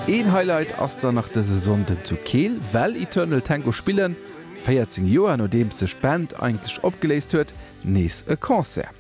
Een Highlight ass dann nach dëse Sonnden zu Keel, well Eternal Tango spillen. 14 Joer nodeems sech d'Band eigentlech opgeléist huet, nees e Concert.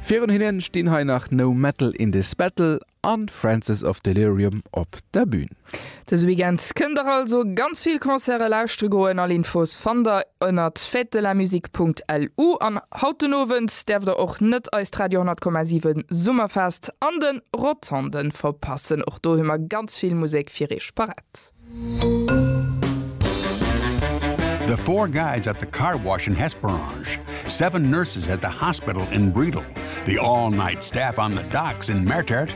Virun hinne stinn hei nach No Metal In This Battle a Francis Of Delirium op der Bün. Dëse Weekend kënnt der also ganz vill Concerte lauschtere goen. All Infos fannt der ënnert fêtedelamusique.lu an haut den Owend däerft der och net eist Radio 10,7 Summerfest an de Rotondë verpassen. Och do hu mer ganz vill Musek fir iech parät. The four guys at the car wash in Hesperange, seven nurses at the hospital in Bredal, the all-night staff on the docks in Mertert,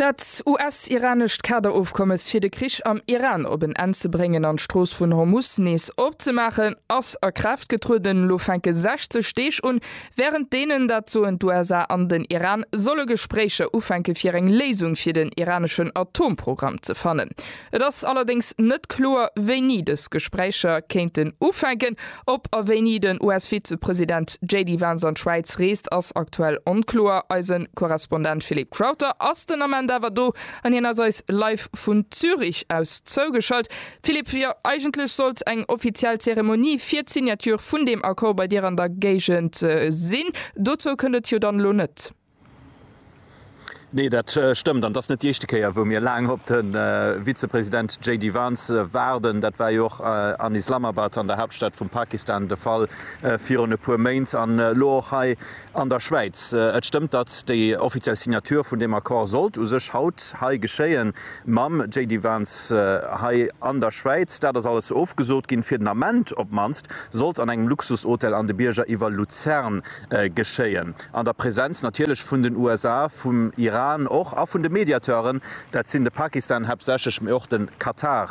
Dat US-iranescht Kaderofkommes fir de Krich am Iran op en Enn ze bréngen an d'Strooss vun Hormus nees opzemaachen, ass a Kraaft getrueden. Elo fänke 60 Deeg un, wärend deenen, dat soen d'USA an den Iran, solle Gespréicher ufänke fir eng Léisung fir den iraneschen Atomprogramm ze fannen. Et ass allerdéngs net kloer, wéini dës Gespréicher kéinten ufänken. Ob a wéini den US-Vizepresident JD Vance an d'Schwäiz reest, ass aktuell onkloer. Eise Korrespondent Philippe Crowther ass den Ament awer do an hien ass eis live vun Zürich aus zougeschalt. Philippe, jo eigentlech sollt eng offiziell Zeremonie fir d'Signature vun deem Accord bei dir an der Géigend sinn. Dozou kënnt et jo dann elo net. Nee, dat stëmmt. An et ass net déi éischte Kéier, wou mir laang op de Vizepresident JD Vance waarden. Dat war jo och an Islamabad, an der Haaptstad vum Pakistan, de Fall virun e puer Méint an elo och hei an der Schwäiz. Et stëmmt, datt déi offiziell Signature vun deem Accord sollt u sech haut hei geschéien, mam JD Vance hei an der Schwäiz. Dat ass alles ofgesot ginn, fir den Ament op d'mannst. Sollt an engem Luxushotel an de Bierger iwwer Luzern geschéien, an der Präsenz natierlech vun den USA, vum Iran och a vun de Mediateuren, dat sinn de Pakistan haaptsächlech, mee och de Katar